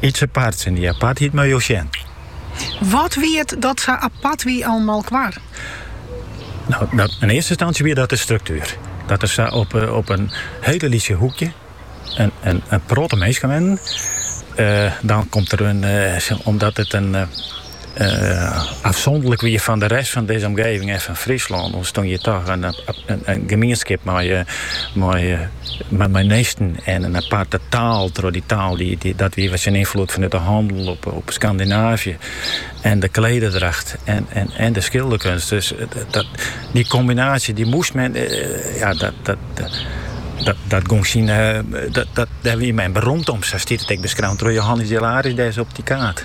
Iets aparts en dy apartheid mei jo sjen. Wat wie it dat sa apart wie oan Molkwar? Nou, dat, yn earste ynstânsje wie dat de struktuer. Dat der sa op, eh, op in hiele lytse hoekje in, in, in protte minsken wennen. Uh, dan komt der in, uh, omdat it in, uh, Ofsûnderlik wie fan de rest fan dizze omgeving en fan Fryslân ûntstong hjir toch in gemienskip mei ministen en in aparte taal troch dy taal dy't dat wie wat syn ynfloed fanút de hannel op Skandinaavje en de klederdracht en de skilderkunst. Dus dy kombinaasje dy moast men, ja dat gong syn, dêr wie men berûmd om, sa stiet it ek beskreaun troch Johannes Hilarides dêr op dy kaart.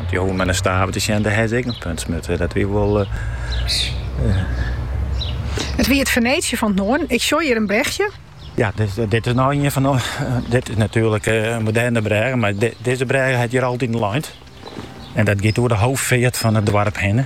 Dy hoege men yn Staveren te sjen, dêr hawwe se ek in punt smutte. Dat wie wol. Uh, uh. It wie it Feneesje fan it Noarden. Ik sjoch hjir in brechje. Ja, dit, eh, dit is no ien fan. Eh, dit is natuerlik eh, in moderne brêge, mar dizze brêge hat hjir altyd leind. En dat giet oer de hoofdfeart fan it doarp hinne.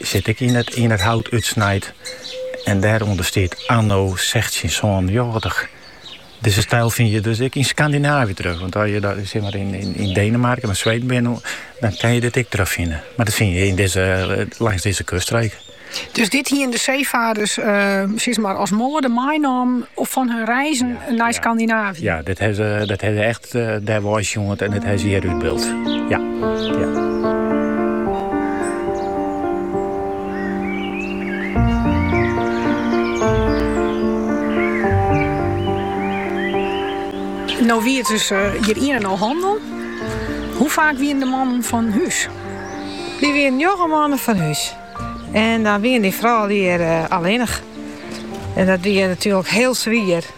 Sit ek yn it hout útsnijd en dêrûnder stiet anno sechstjin sânennjoggentich. Dizze styl fyn je dus ek yn Skandinaavje terug, want as je yn Denemarken of Sweden binne, dan kinne je dit ek terugfine. Mar dat fyn je langs dizze kuststreek. Dus dit hiene de seefaarders as moade meinommen fan hun reizen nei Skandinaavje? Ja, dat ha se Dêr wei sjoend en dit ha se hjir útbyld. Ja, ja. No wie it dus eh, hjir ien en al hannel. Hoe faak wiene de mannen fan hûs? Dy wiene njoggen moannen fan hûs. En dan wien dy frou hjir eh, allinnich. En dat wie natuerlik hiel swier.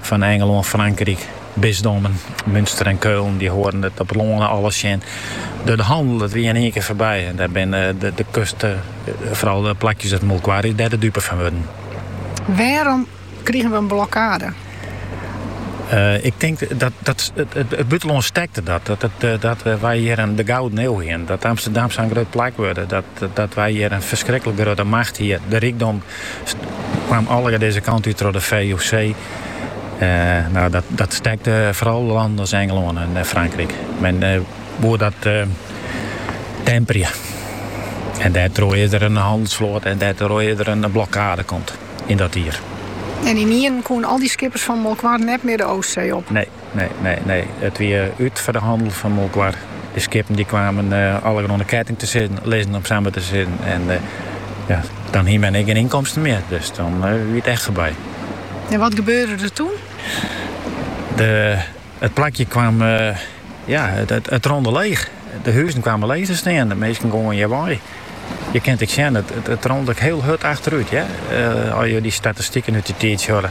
Fan Ingelân, Frankryk, bisdommen Münster en Keulen, dy holden der op lân alles tsjin. De de hannel, dat wie yn ien kear foarby. En dêr binne de kust, fral de plakjes as Molkwar, dêr de dupe fan wurden. Wêrom krigen we in blokkade? Ik tink dat dat it bûtenlân stekte dat. Dat wy hjir yn de gouden ieu hienen. Dat Amsterdam sa'n grut plak wurde. Dat wy hjir in ferskriklik grutte macht hie. De rykdom kaam allegear dizze kant út troch de VOC. Dat stekte foaral lannen as Ingelân en Frankryk. Men woe dat temperje en dêrtroch is der in hannelsfloat en dêrtroch is der in blokkade komd yn dat jier. En ynienen koene al dy skippers fan Molkwar net mear de Oostsee op? Nee, Nee, nee, nee. It wie út, foar de hannel fan Molkwar. De skippen dy kamen allegear oan de ketting te sizzen, lizzen om samar te sizzen en ja, dan hie men ek gjin ynkomsten mear. Dus dan wie it echt foarby. En wat gebeurde der toen? De, it plakje kaam, ja, it, it, it rûn leech. De huzen kamen leech te stean. De minsken gongen hjirwei. Je kinne ek sjen, it, it, it rûn ek hiel hurd efterút. Ja? Uh, as je dy statistiken út dy tiid hearre.